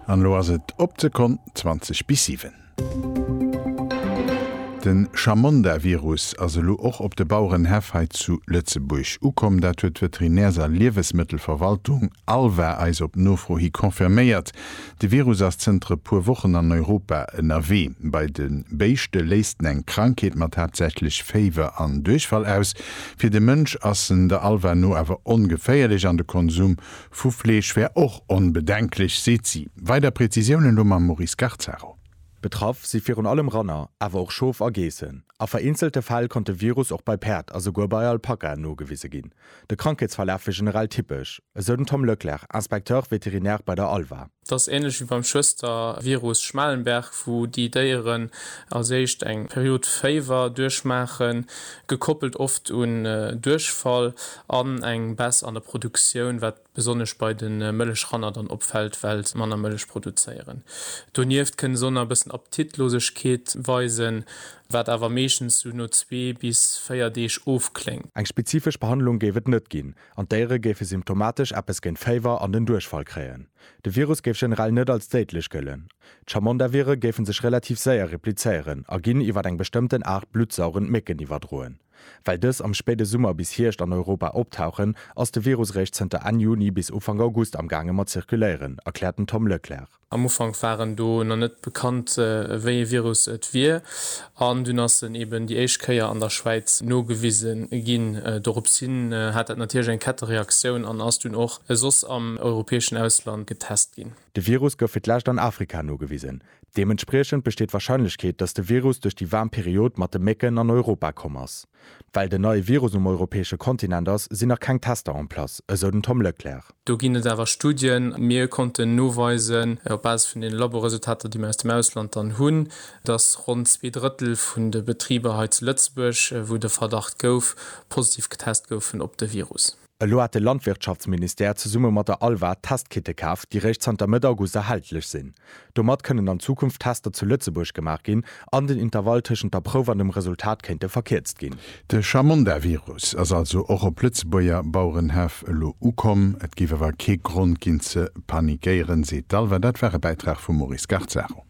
An elo ass et op d'Sekonn 20 bis 7. De Chamonda-Virus ass elo och op de Bauerenhäff hei zu Lëtzebuerg ukomm. Dat huet d'Veterinärs a Liewesmëttelverwaltung, ALVA, eis op Nofro hi confirméiert. De Virus ass zënter e puer Wochen an Europa ënnerwee. Bei de Béischte léist en eng Krankheet mat haaptsächlech Féiwer an Duerchfall aus. Fir de Mënsch ass en der ALVA no awer ongeféierlech an de Konsum Vu Fleesch wär och onbedenklech, seet si. Weider Prezisiounen elo mam Maurice Garzaro. Betraff si virun allem Ranner, awer och Schof a Geessen. A vereenzelte Fäll konnt de Virus och bei Päerd a souguer bei Alpakaen nogewise ginn. De Krankheetsverlaf wier generell typesch, esou den Tom Leclerc, Inspecteur vétérinaire bei der ALVA. Et ass ähnlech wéi beim Schwëstervirus Schmalenberg, wou déi Déieren als éischt eng Period Féiwer duerchmaachen, gekoppelt oft un Duerchfall an eng Baisse an der Produktioun, wat besonnesch bei de Mëllechranner dann opfält, well se manner Mëllech produzéieren. Donieft kënne se och nach e bëssen Appetitlosegkeet weisen, wat awer meeschtens sou no zwee bis véier Deeg ofkléngt. Eng spezifesch Behandlung géif et net ginn, An d'Déiere géife symptomatesch eppes géint Féiwer an den Duerchfall kréien. De Virus géif generell net als déidlech gëllen. D'Chamondavire géife sech relativ séier replizéieren a ginn iwwer eng bestëmmten Aart bluttsaugend Mécken iwwerdroen. Well dës am spéide Summer bis Hierscht an Europa optauchen, ass de Virus réischt zënter Enn Juni bis Ufank August amgaange mat zirkuléieren, erkläert den Tom Leclerc. Am Ufank waren do nach net bekannt wéi ee Virus et wier an dunn ass en eben déi éischt Kéier an der Schwäiz nogewise ginn. Dorops hin hat dat natierlech eng Kettereaktioun an ass dunn och soss am europäeschen Ausland getest ginn. De Virus gouf fir d'lescht an Afrika nogewisen. Deementspriechend besteet d'Warscheinlechkeet, datt de Virus duerch déi waarm Period mat de Mécken an Europa komm ass. Well den neie Virus um europäesche Kontinent ass, sinn nach keng Tester en place, esou den Tom Leclercq. Do ginn et awer Studien. Mir konnten noweisen, op Basis vun deene Laboresultater, déi mir aus dem Ausland dann hunn, datt ronn zwee Drëttel vun de Betriber hei zu Lëtzebuerg, wou de Verdacht gouf, positiv getest goufen op de Virus. Elo hat de Landwirtschaftsministère zesumme mat der ALVA Testkitte kaf, déi réischt zanter Mëtt August erhältlech sinn. Domat kënnen an Zukunft Tester zu Lëtzebuerg gemaach ginn an den Intervall tëschent der Prouf an dem Resultat kéinte verkierzt ginn. De Chamonda-Virus ass also och op Lëtzebuerger Bauerenhäff elo ukomm. Et géif awer kee Grond ginn ze panikéieren, seet d'ALVA. Dat war e Bäitrag vum Maurice Garzaro.